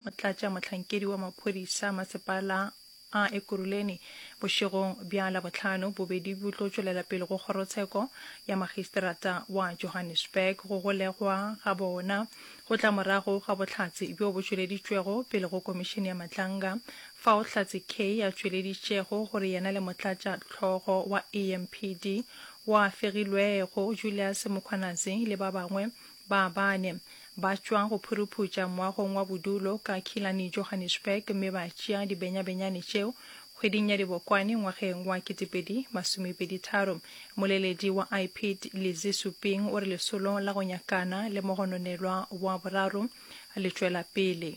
Motlatšamohlankedi wa maphodisa masepala a Ekurhuleni bošegong bja Labohlano bobedi bo tlo tšwelela pele go kgorotsheko ya makgistrata wa Johannesburg go golegwa ga bona go tla morago ga bohlatse bjo bo tšweleditšwego pele go komišene ya Matlanga fao Hlatse Kay a tšweleditšego gore yena le motlatšahlogo wa EMPD wa fegilwego Julius Mkhwanazi le ba bangwe Ba bane, ba tšwa go phuruphuša moagong wa bodulo ka Killarney, Johannesburg, mme ba tšea dibenyabenyane tšeo. Kgweding ya Dibokwane ngwageng wa 2023, moleledi wa IPID, Lizzie Suping, o re lesolo la go nyakana le mogononelwa wa boraro le tšwela pele.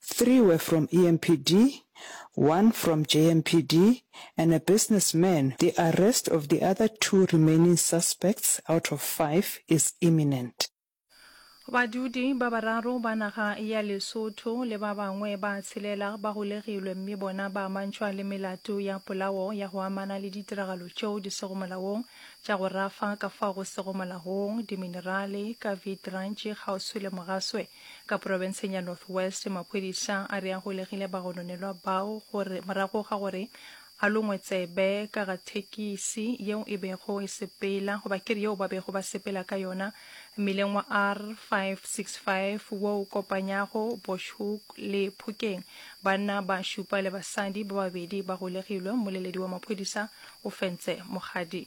Three were from EMPD, one from JMPD and a business man, the arrest of the other two remaining suspects out of five is imminent. Badudi ba bararo ba naga ya Lesotho le ba bangwe ba tshelela ba golegilwe mme bona ba amantšhwa le melato ya polao ya go amana le ditiragalo tšeo di sego molaong tša go rafa ka fao go sego molaong diminerale ka Vietrantšhi kgauswi le Mogaswe Ka porofenseng ya North West, maphodisa a re a golegile bagononelwa bao gore morago ga gore a longwe tsebe ka ga thekisi yeo e bego e sepela goba ke re yeo ba bego ba sepela ka yona mmileng wa R565 wo o kopanyago Bushhoek le Phokeng. Banna ba šupa le basadi ba babedi ba golegilwe, mmoleledi wa maphodisa o fentse mogadi.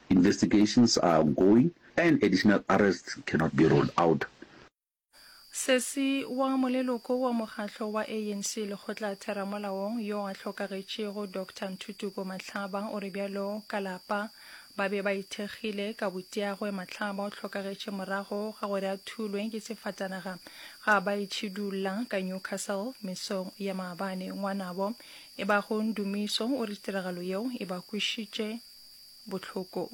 Investigations are ongoing and additional arrests cannot be ruled out. Sesi wa moleloko wa mokgatlo wa ANC lekgotlatheramolaong yo a hlokagetšego Doctor Ntutuko Matlhaba o re bjalo ka lapa ba be ba ithekgile ka boteagwe Matlhaba o hlokagetše morago ga gore a thulwe ke sefatanaga ga ba itšhidulla ka Newcastle mesong ya maabane. Ngwanabo e bago Ndumiso o re tiragalo yeo e ba kwešitše bohlokong.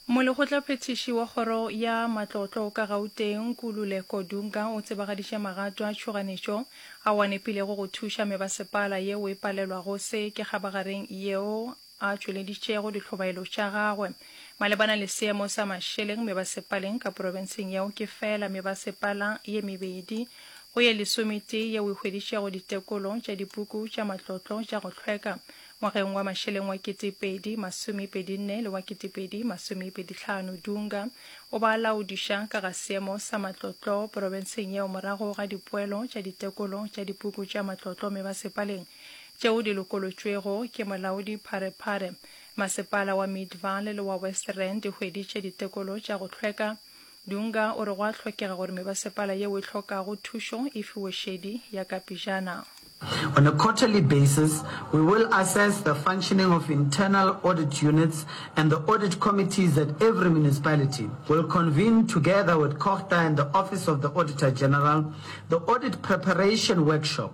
Molekgotlaphethiši wa kgoro ya matlotlo ka Gauteng, Nkululeko Dunga o tsebagaditše magato a tšhoganetšo ao a nepilego go thuša mebasepala yeo e palelwago se ke kgabagareng yeo a tšweleditšego dihlobaelo tša gagwe malebana le seemo sa mašeleng mebasepaleng ka porofenseng yeo ke feela mebasepala ye mebedi go ye lesometee yeo e hweditšego ditekolo tša dipuku tša matlotlo tša go hlweka ngwageng wa mašeleng wa 2024 le wa 2025. Dunga o ba laodiša ka ga seemo sa matlotlo porofenseng yeo morago ga dipoelo tša ditekolo tša dipuku tša matlotlo mebasepaleng tšeo di lokolotšwego ke molaodi Pharephare. Masepala wa Midvaal le wa West Rand di hweditše ditekolo tša go hlweka. Dunga o re go a hlokega gore mebasepala yeo e hlokago thušo e fiwe šedi ya ka pejana. On a quarterly basis, we will assess the functioning of internal audit units and the audit committees at every municipality. We'll convene together with COGTA and the Office of the Auditor General the audit preparation workshop.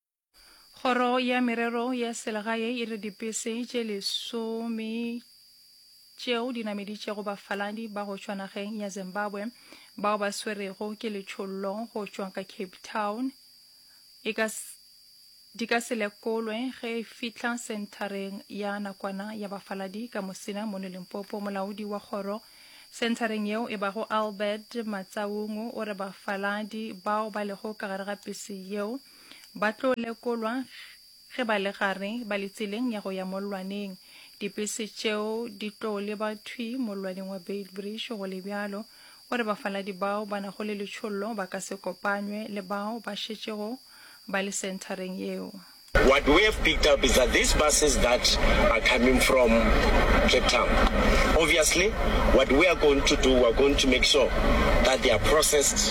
Kgoro ya Merero ya Selegae e re dipese tše lesome tšeo di nameditšego bafaladi ba go tšwa nageng ya Zimbabwe bao ba swerego ke letšhollo go tšwa ka Cape Town e ka di ka se lekolwe ge e fihla senthareng ya nakwana ya bafaladi ka mosina mono limpopo molaodi wa kgoro senthareng yeo e bago albert matsaungu o re bafaladi bao ba lego ka gare ga pese yeo Ba tlo lekolwa ge ba le gare ba le tseleng ya go ya mollwaneng. Dipese tšeo di tlo leba thwi mollwaneng wa Beitbridge go le bjalo gore bafaladi bao ba nago le letšhollo ba ka se kopanywe le bao ba šetšego ba le senthareng yeo. What we have picked up is that these buses that are coming from Cape Town, obviously what we are going to do, we are going to make sure that they are processed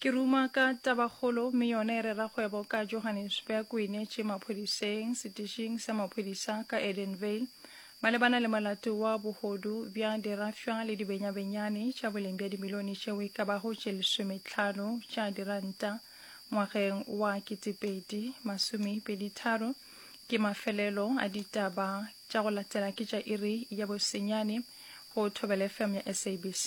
Ke ruma ka tabakgolo mme yona e rera kgwebo ka Johannesburg o inetše maphodiseng setišing sa maphodisa ka Edenvale malebana le molato wa bohodu bja dirafša le dibenyabenyane tša boleng bja dimilione tšeo e ka bago tše lesometlhano tša diranta ngwageng wa ketepedi masomepeditharo ke mafelelo a ditaba tša go latela ke tša iri ya bosenyane go Thobela FM ya SABC